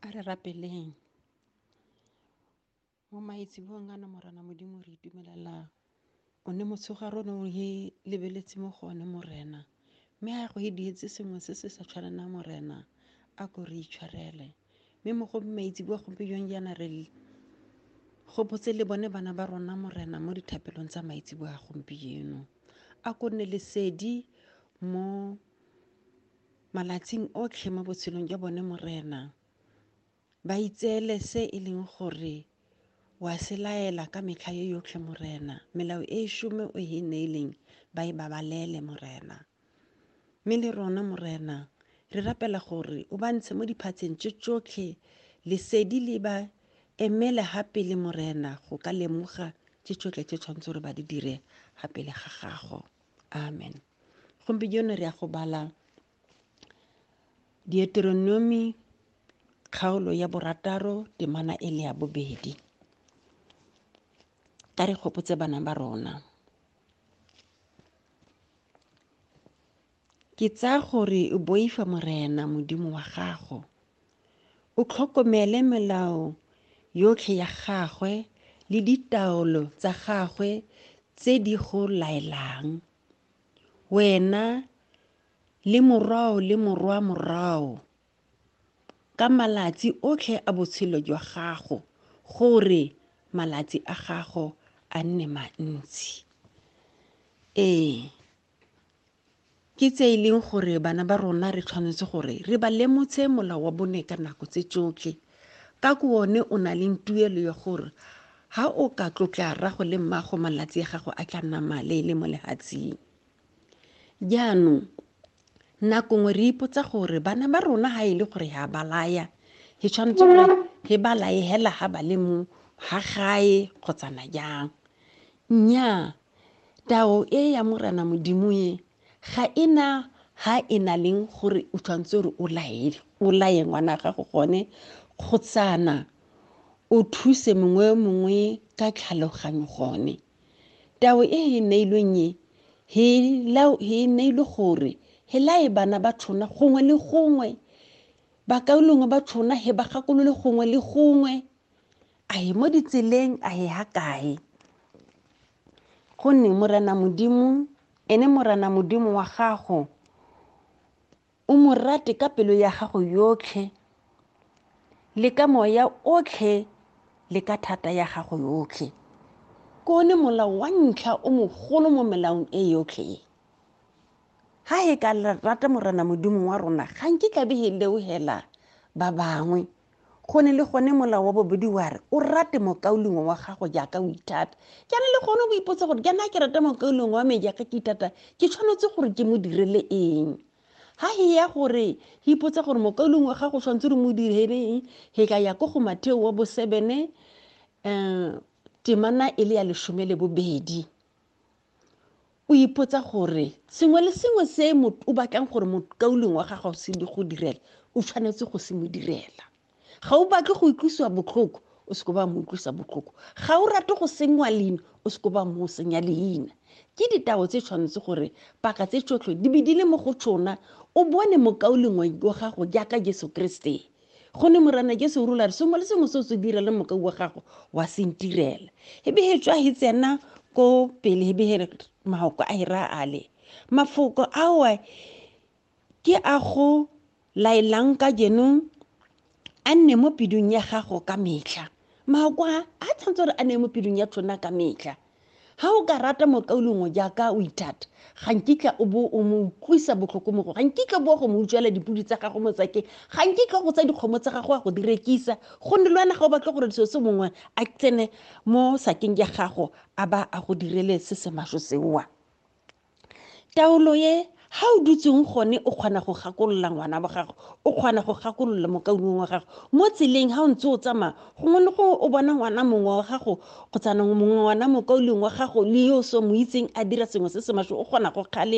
A re rapeleng. Mo maitsebong a na Morena Modimo re itumelela o ne motshegare o ne o e lebeletse mo go one Morena. Mme a go e dietse sengwe se se sa tshwanelang Morena a ko re itshwarele. Mme mo go maitsebua gompieno jaana re gopotse le bone bana ba rona Morena mo dithapelong tsa maitsebua a gompieno. A ko nne lesedi mo malatsing otlhe mo botshelong jwa bone Morena, ba itseele se e leng gore wa se laela ka metlha yo yotlhe Morena, melao e šome o e neileng ba e babalele Morena. Mme le rona Morena re rapela gore o ba ntshe mo diphatsheng tse tsotlhe lesedi le ba emele ga pele Morena go ka lemoga tse tsotlhe tse tshwanetse gore ba di dire ga pele ga gago. amen gompieno re ya go bala dieteronomi kgaolo ya borataro temana e le ya bobedi ka re gopotse bana ba rona ke tsaya gore o boifa morena modimo wa gago O tlhokomele melao yotlhe ya gagwe le ditaolo tsa gagwe tse di go laelang, wena le morwao le morwa morwao, ka malatsi otlhe a botshelo jwa gago, gore malatsi a gago a nne mantsi. Ee, Ke tse e leng gore bana ba rona re tshwanetse gore re ba lemotshe molao wa bone ka nako tse tsotlhe ka ko one o na leng tuelo ya gore ha o ka tlotla rrago le mmago malatsi a gago a tla nna male le mo lehatsing jaanong nako nngwe re ipotsa gore bana ba rona ha e le gore ha ba laya he tshwanetse gore he ba laye hela ha ba le mo ha gae kgotsana jang nnyaa Tao e ya Morena Modimo e ga e na ha e na leng gore o tshwanetse gore o laele o laye ngwana gago gone kgotsana o thuse mongwe yo mongwe ka tlhaloganyo gone tao e e neilweng e he e neilwe gore he lae bana ba tshona gongwe le gongwe bakaulongwe ba tshona he ba gakolole gongwe le gongwe a ye mo ditseleng a ye ha kae gonne morena modimo ene morena modimo wa gago o mo rate ka pelo ya gago yotlhe le ka moya otlhe le ka thata ya gago yotlhe ke one molao wa ntlha o mogolo mo melaong e yotlhe e ga e ka rata morena modimo wa rona ga nke tlabe e leogela ba bangwe Go ne le gone molao wa bobedi wa re o rate mokaulengwe wa gago jaaka o ithata. Jaana le gone o ipotsa gore jaana ke rata mokaulengwe wa me jaaka ke ithata ke tshwanetse gore ke mo direle eng? ha he ya gore he ipotsa gore mokaulong wa gago tshwanetse re mo direleng he ka ya ko go matheo wa bosebene um temana e le ya lesome le bobedi O ipotsa gore sengwe le sengwe se o batlang gore mokauleng wa gago se di go direla o tshwanetse go se mo direla ga o batle go utlwisiwa botlhoko o se ko ba mo utlwisa botlhoko ga o rate go sengwa leina o se ko ba mo senya leina ke ditao tse tshwanetse gore paka tse tsotlhe di be di le mo go tsona o bone mokauleng wa gago jaaka jesu kriste go ne morana jesu o rola re sengwe le sengwe se o se dira le mokau wa gago wa se ntirela ebe he tswa he tsena ko pele ebe he mahoko a hera ale mafoko awa ke a go laelang ka jenong a nne mo pidung ya gago ka metlha mahoko a a tshwanetse gore a ne mo pidung ya tlhona ka metlha ga o ka rata mokaulengwe jaaka o ithata ga nkitla o bo o mo utlwisa botlhoko mo go ga nkitla o bo go mo utswela dipodi tsa gago motsakeng ga nkitla go tsa dikgomo tsa gago a go di rekisa gonne le wena ga o batle gore seo se mongwe a tsene mo sakeng ya gago a ba a go direle se se masho seoa taolo e ga o dutseng gone o kgona go gakolola ngwana wa gago o kgona go gakolola mokaulong wa gago mo tseleng ga o ntse o tsamaya gongwe le gongwe o bona ngwana mongwe wa gago kgotsa mongwe ngwana mokaulong wa gago le yo o se mo itseng a dira sengwe se se maswe o kgona go kgale